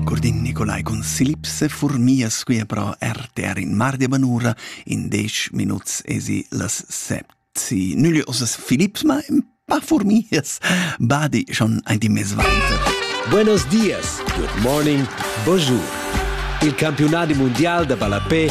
Curdin Nicolai cun Silip se furmia squia pro RTR in mar de banura, in dec minuts esi las set. Si nügli osas Philips, ma in pa furmias, badi schon ein die Messweiter. Buenos dias, good morning, bonjour. Il campiunat mundial de ballapé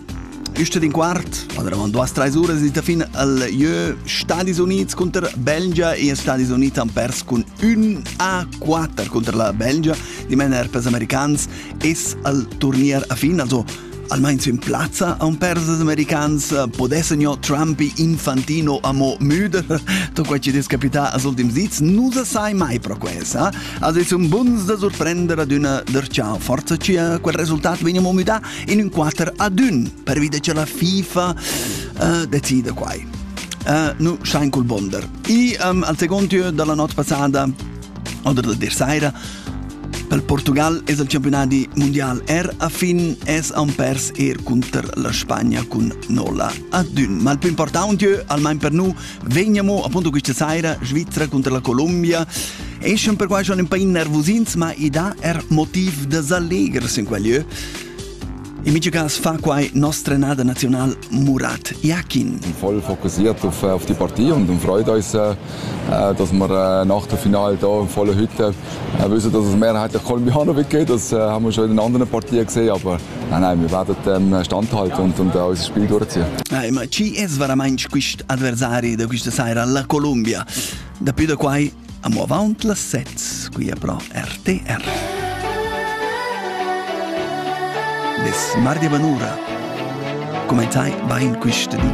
Üste d'in quart, oravant duas trais uras ed fin al jeu Stadis Unids cunter Belgia e Stadis Units han pers cun ün a 4 cunter la Belgia. Dimena per americans es al turnier a fin, also almain in plazza a un pers als americans podessan jo Trumpi Infantino amo müde to quai ci des capità als ultims dits nu sa sai mai pro quesa also es un buns da surprender ad una der ciao forza ci quel resultat veniamo müda in ün quater ad ün pervi che la FIFA uh, decide quai. Uh, nu schein col bonder. I um, al secondo tür dalla notte passata oder da der saira Per Portugal es il campionati mondial R a fin es han pers er cunter la Spagna cun 0 ad 1. Ma il più importante al mein per nu Vegniamo appunto questa sera Svizzera contro la Colombia. Escen per quai schon un po' innervosins, ma i dà er motiv da s'allegres in quel lieu. In miei cas fa quai nostra nada nazional Murat Yakin. Voll fokussiert auf, auf die Partie und, und freut uns, äh, dass wir äh, nach dem Finale hier in voller Hütte äh, wissen, dass es mehrheitlich Kolumbianer gibt. Das äh, haben wir schon in anderen Partien gesehen, aber Nein, nein, wir werden dann standhalten und, und äh, unser Spiel durchziehen. Eh, ma chi es veramente quist avversari da questa sera alla Colombia? Da più da quai, andiamo avanti las sets qui a Pro RTR. Des Mardi Banura. Come tai va in questa dì?